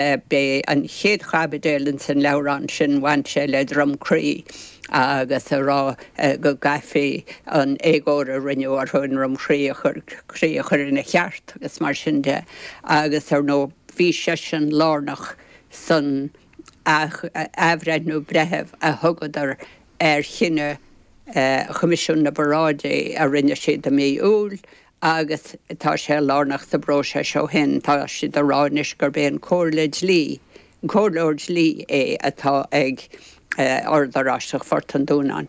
B'é an chéad chaibidil insan leabhrán sin, bhain sé le Droim Crí agus a rá go gcaithfí an éagóir a rinneadh orthu i nDroim Chrí a chur, Crí a chur ina cheart agus mar sin de. Agus ar ndóigh bhí seisean lárnach san athbhreithniú breithiúnach a thugadar ar chinneadh Choimisiún na bParáidí a rinne siad i mí Iúil, agus tá sé lárnach sa bpróiseas ó shin. Tá siad ag rá anois gurb é an Comhairle Dlí, an Comhairleoir Dlí é atá ag Ord Oráisteach Phort an Dúnáin.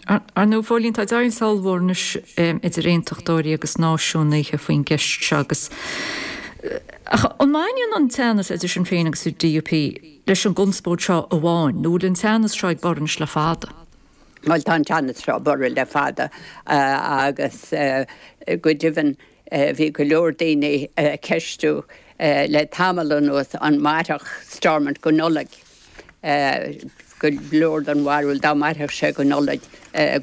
Ar ndóigh, Phóilín, tá deighilt ollmhór anois idir Aontachtóirí agus Náisiúnaithe faoin gceist seo agus, ach an mbaineann an teannas idir Sinn Féin agus an DUP leis an gconspóid seo amháin nó an bhfuil an teannas seo ag borradh anois le fada? Bhuel, tá an teannas seo ag borradh le fada agus go deimhin bhí go leor daoine ag ceistiú le tamall anuas an mairfeadh Stormont go Nollaig, go leor den bharúil dá mairfeadh sé go Nollaig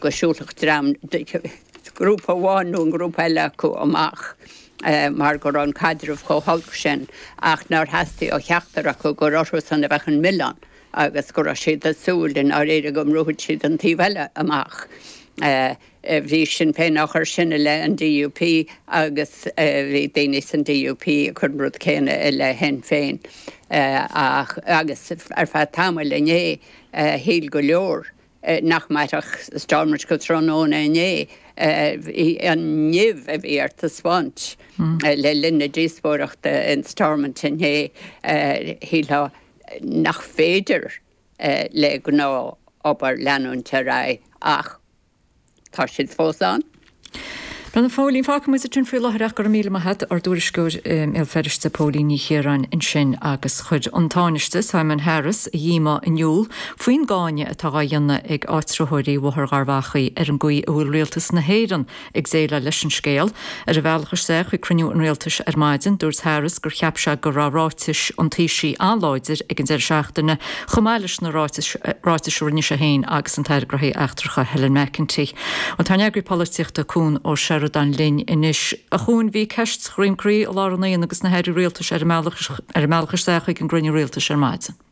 go siúlfadh dream, grúpa amháin nó an grúpa eile acu amach mar go raibh an caidreamh chomh holc sin ach nár theastaigh ó cheachtar acu gur orthusan a bheadh an milleán. agus go raibh siad ag súil i ndáiríre go mbrúfadh siad an taobh eile amach. Bhí Sinn Féin á chur sin i leith an DUP agus bhí daoine san DUP ag cur an rud céanna i leith Shinn Féin ach, agus ar feadh tamaill inné, shíl go leor nach mairfeadh Stormont go tráthnóna inné, an nimh a bhí ar taispeáint le linn na díospóireachta in Stormont inné, shílfeá. nárbh fhéidir le gnáth-obair leanúint ar aghaidh ach tá siad fós ann. Bhuel, a Phóilín, fágfaidh muid é ansin faoi láthair ach go raibh míle maith agat, ár dtuairisceoir i mBéal Feirste, Póilín Ní Chiaráin, ansin agus chuir an Tánaiste, Simon Harris, a dhíomá in iúl faoin gcáineadh atá á dhéanamh ag áitritheoirí Bhóthar Gharbhachaidh ar an gcaoi a bhfuil Rialtas na hÉireann Ag déileáil leis an scéal, ar a bhealach isteach chuig cruinniú an rialtais ar maidin, dúirt Harris gur cheap sé go raibh ráitis an Taoisigh an-láidir ag an deireadh seachtaine, chomh maith leis na ráitis a rinne sé féin agus an tAire Gnóthaí Eachtracha Helen McEntee. Bhuel, tá ár n-eagraí polaitíochta Cuan Ó Seireadáin linn anois. A Chúain, bhí ceist Dhroim Crí i lár an aonaigh agus na hairí rialtais ar a mbealach isteach chuig an gcruinniú rialtais ar maidin.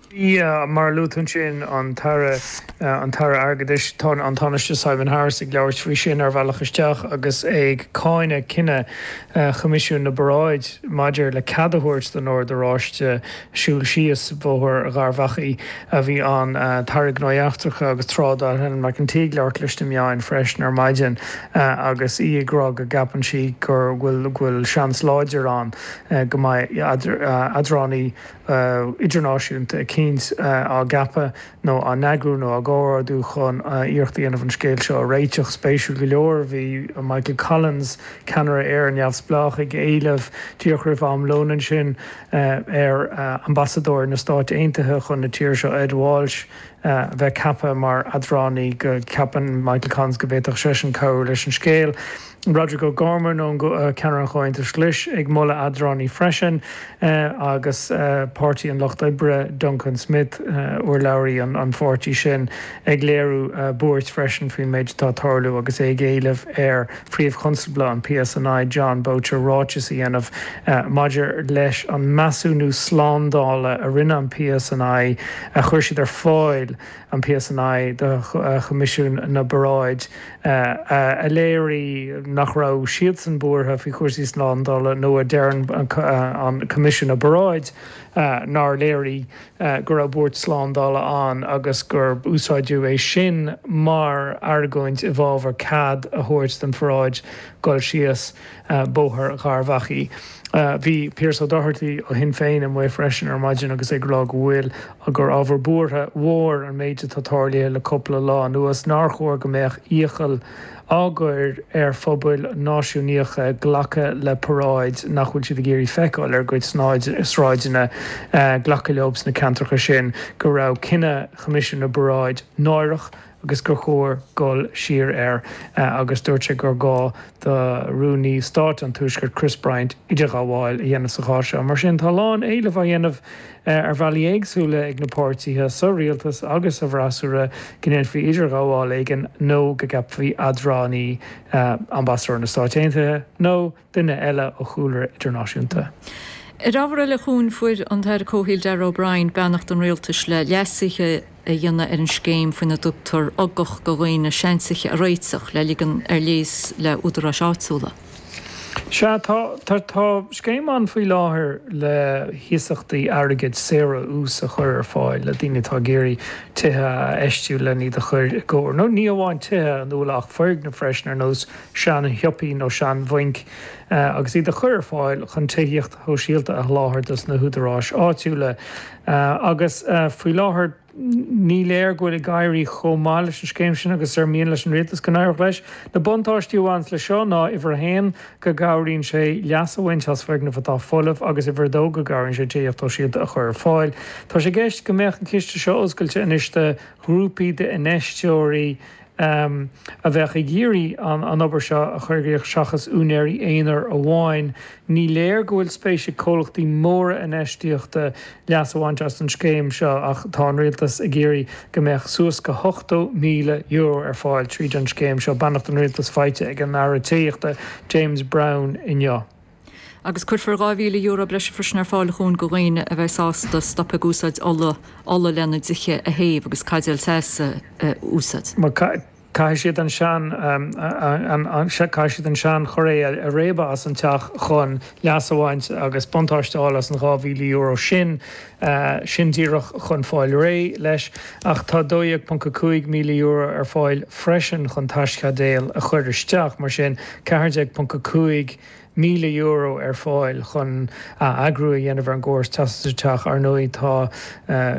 Faoi mar a luadh ansin, an tAire, an tAire Airgeadais, tá an Tánaiste Simon Harris ag labhairt faoi sin ar a bhealach isteach agus é ag cáineadh cinneadh Choimisiún na bParáid maidir le cead a thabhairt don Ord Oráiste siúl síos Bóthar Gharbhachaidh. Bhí an tAire Gnóthaí Eachtracha agus Trádála Helen McEntee ag labhairt leis na meáin freisin ar maidin agus í ag rá go gceapann sí go bhfuil seans láidir ann go mbeidh eadránaí idirnáisiúnta eicínt á gceapadh nó á n-eagrú nó á gcomhordú chun iarracht a dhéanamh an scéal seo a réiteach. Spéisiúil go leor, bhí Michael Collins, ceannaire Éire Neamhspleách, ag éileamh, díreach roimh am lóin ansin, ar ambasadóir na Stáit Aontaithe chun na tíre seo, Ed Walsh, a bheith ceaptha mar eadránaí, go gceapann Michael Collins go bhféadfadh seisean cabhrú leis an scéal. Roderic O'Gorman nó ceannaire an Chomhaontais Ghlais ag moladh eadránaí freisin agus Páirtí an Lucht Oibre, Duncan Smith, urlabhraí an pháirtí sin, ag léiriú buairt freisin faoin méid atá tarlú agus é ag éileamh ar Phríomh-Chonstabla an PSNI, Jon Boutcher, ráiteas a dhéanamh maidir leis an measúnú slándála a rinne an PSNI, a chuir siad ar fáil, an PSNI, do Choimisiún na bParáid. a léirigh nach raibh siadsan buartha faoi chúrsaí slándála nó a deir an Coimisiún na bParáid nár léirigh go raibh buairt slándála ann agus gur úsáideadh é sin mar argóint i bhfabhar cead a thabhairt don pharáid dul síos Bóthar Gharbhachaidh. Bhí Pearse O'Doherty ó Shinn Féin amuigh freisin ar maidin agus é ag rá go bhfuil gur ábhar buartha mhóir an méid atá tarlaithe le cúpla lá anuas, nár chóir go mbeadh iachall á gcur ar phobail náisiúnaíocha glacadh le paráid nach bhfuil siad ag iarraidh feiceáil ar a gcuid sráideanna, glacadh leob sna ceantracha sin go raibh cinneadh Choimisiún na bParáid náireach, agus gur chóir dul siar air agus dúirt sé gur gá do Rúnaí Stáit an Tuaiscirt, Chris Bryant, idirghabháil a dhéanamh sa chás seo. Mar sin, tá a lán éilimh á dhéanamh ar bhealaí éagsúla ag na páirtithe sa rialtas agus sa bhfreasúra go ndéanfaí idirghabháil éigin nó go gceapfaí eadránaí, ambasadóir na Stáit Aontaithe nó. duine eile ó chúlra idirnáisiúnta. Ar ábhar eile, a Chuain, fuair an tAire Comhshaoil Darragh O'Brien beannacht an Rialtais le leasuithe a dhéanamh ar an scéim faoina dtugtar ugach do dhaoine seantithe a réiteach le ligean ar léas le údaráis áitiúla. Sea, tá scéim ann faoi láthair le hiasachtaí airgid saor ó ús a chur ar fáil le daoine atá ag iarraidh tithe a fheistiú len iad a chur i gcóir, nó ní amháin tithe, ar ndóigh, ach foirgnimh freisin ar nós sean-shiopaí nó sean-bhainc, agus iad a chur ar fáil chun tithíocht shóisialta a sholáthar dos na húdaráis áitiúla. Agus faoi láthair ní léir go bhfuil ag éirí chomh maith leis an scéim sin agus is ar mhian leis an Rialtas go n-éireodh leis. Na buntáistí a bhaineann le seo ná, uimhir a haon, go gcabhraíonn sé leas a bhaint as foirgnimh atá folamh agus, uimhir a dó, go gcabhraíonn sé tithíocht shóisialta a chur ar fáil. Tá sé i gceist go mbeadh an ciste seo oscailte anois do ghrúpaí d'infheisteoirí a bheadh ag iarraidh an obair seo a chur i gcrích seachas úinéirí aonair amháin. Ní léir go bhfuil spéis ag comhlachtaí móra infheistíochta leas a bhaint as an scéim seo ach tá an Rialtas ag iarraidh go mbeadh suas go €80,000 ar fáil tríd an scéim seo, beannacht an Rialtais faighte ag an Aire Tithíochta, James Browne inniu. Agus cuirfear €2,000 breise freisin ar fáil chun do dhaoine a bheidh sásta stop ag úsáid ola ola lena dtithe a théamh agus caidéil teas a úsáid. Má caithfidh siad an sean caithfidh siad an sean choire a réabadh as an teach chun leas a bhaint agus buntáiste a fháil as an €2,000 sin, sin díreach chun fáil réidh leis. Ach tá €12,500 ar fáil freisin chun teaschaidéal a chur isteach, mar sin €14,500. míle euro ar fáil chun a eagrú a dhéanamh ar an gcóras teasa sa teach. Ar ndóigh, tá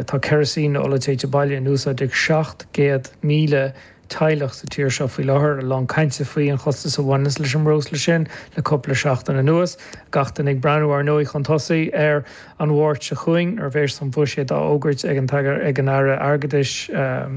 tá ceirisín nó ola téite baile in úsáid ag 700,000 teaghlach sa tír seo faoi láthair. A lán cainte faoin chostas a bhaineas leis an mbreosla sin le cúpla seachtain anuas. Gach duine ag breathnú, ar ndóigh, chun tosaigh ar an Mháirt seo chugainn nuair a bhéas an Buiséad á fhógairt ag an ag an Aire Airgeadais,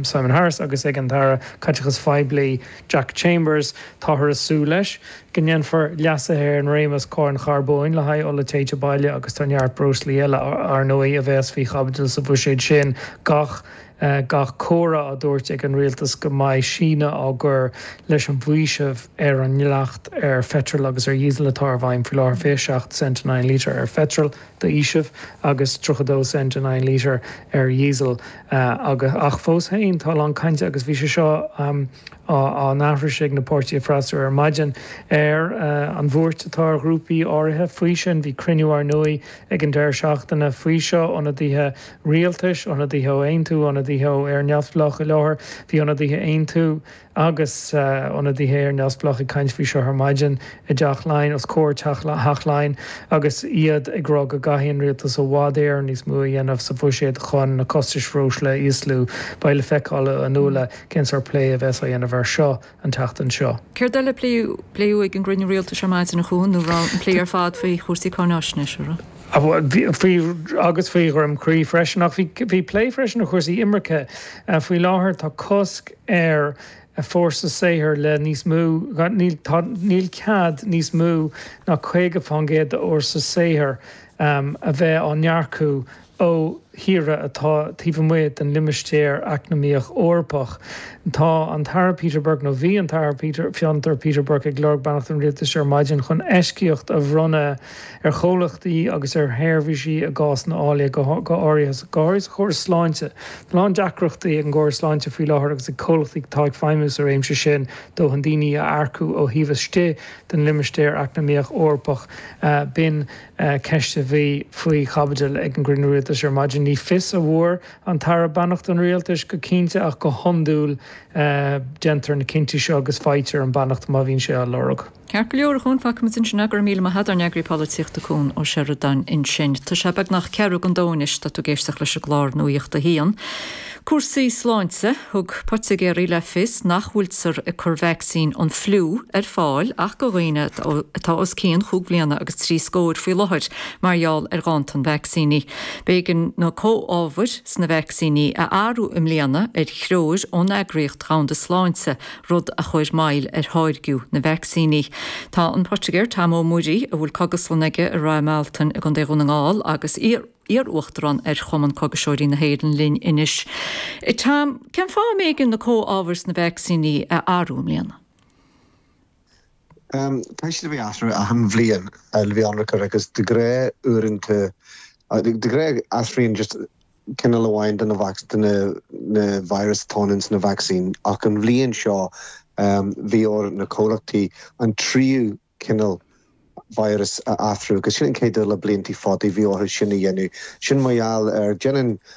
Simon Harris agus ag an tAire Caiteachais Phoiblí, Jack Chambers, táthar ag súil leis. go ndéanfar leasuithe ar an réimeas Cáin Charbóin le haghaidh ola téite baile agus tá neart breoslaí eile, ar ndóigh, a bheas faoi chaibidil sa Bhuiséad sin gach gach comhartha á dtabhairt ag an rialtas go mbeidh síneadh á gcur leis an bhfaoiseamh ar an ndleacht ar pheitreal agus ar dhíosal atá i bhfeidhm faoi láthair 27 cent in aghaidh an lítir ar pheitreal d'fhaoiseamh agus 32 cent in aghaidh an lítir ar dhíosal ach fós féin tá a lán cainte agus bhí sé seo á aithris ag na páirtithe freasúra ar maidin ar an bhuairt atá ar ghrúpaí áirithe faoi sin. Bhí cruinniú, ar ndóigh, ag an deireadh seachtaine faoi seo, ionadaithe rialtais, ionadaithe ó Aontú, ionadaithe ó Éire Neamhspleách. I láthair bhí ionadaithe Aontú agus ionadaithe Éire Neamhspleách ag caint faoi seo ar maidin i dTeach Laighean, os comhair Theach Laighean, agus iad ag rá go gcaithfidh an rialtas i bhfad níos mó a dhéanamh sa bhuiséad chun na costais bhreosla a íoslú. Beidh le feiceáil, a Nuala. Cén sórt plé a bheas á dhéanamh air seo an tseachtain seo? Céard eile a pléadh ag an gcruinniú rialtais ar maidin, a Chúán, nó raibh an plé ar fad faoi chúrsaí cáináisnéise, a raibh? Faoi, agus faoi Dhroim Crí freisin. Ach bhí plé freisin ar chúrsaí imirce. Faoi láthair tá cosc ar fhórsa saothair le níos mó, níl cead níos mó ná 50% d'fhórsa saothair a bheith á n-earcú ó thíortha atá taobh amuigh den Limistéar Eacnamaíoch Eorpach. Tá an tAire Peter Burke, nó bhí an tAire Peter, Fiontar, Peter Burke ag lorg beannacht an Rialtais ar maidin chun eisceacht a bhronnadh ar chomhlachtaí agus ar sheirbhísí i gcás ná fáille, go h-áirithe sa chóras sláinte. Tá a lán deacrachtaí ag an gcóras sláinte faoi láthair agus ag comhlachtaí atá ag feidhmiú sa réimse sin dóthain daoine a earcú ó thaobh istigh den Limistéar Eacnamaíoch Eorpach. B'in. ceist a bhí faoi chaibidil ag an gcruinniú rialtais ar maidin. Ní fios a bhfuair an tAire beannacht an rialtais go cinnte ach go hiondúil déantar na cinntí seo agus faightear an bheannacht má bhíonn sé á lorg. Ceart go leor, a Chúáin, fágfaidh muid ansin é. Go raibh míle maith a't, ár n-eagraí polaitíochta Cúán Ó Seireadáin ansin. Tá sé beagnach ceathrú chun a dó anois, tá tú ag éisteacht leis an gclár Nuacht a hAon. Cúrsaí sláinte, thug poitigéirí le fios nach bhfuiltear ag cur vacsaín an fliú ar fáil ach do dhaoine atá os cionn chúig bhliana agus trí scóir faoi láthair mar gheall ar ghanntan vacsaíní. B'éigean na comhábhair sna vacsaíní a athrú i mbliana ar threoir ón eagraíocht dhomhanda sláinte, rud a chuir moill ar tháirgiú na vacsaíní. Tá an poitigéir Tom Ó Muirí, a bhfuil cógaslann aige i Rath Mealtain i gContae Dhún na nGall agus iar-uachtarán ar Chumann Cógaiseoirí na hÉireann linn anois. Tom, cén fáth a mb'éigean na comhábhair sna vacsaíní a athrú i mbliana? Tá siad á n-athrú achan bhliain, le bheith ionraic, agus de ghnáth uaireanta, de ghnáth athraíonn just cineál amháin de na virus atá ins an vacsaín ach an bhliain seo bhí ar na comhlachtaí an tríú cineál virus a athrú, agus sin an chéad uair le blianta fada a bhí orthu sin a dhéanamh. Sin mar gheall ar, déanann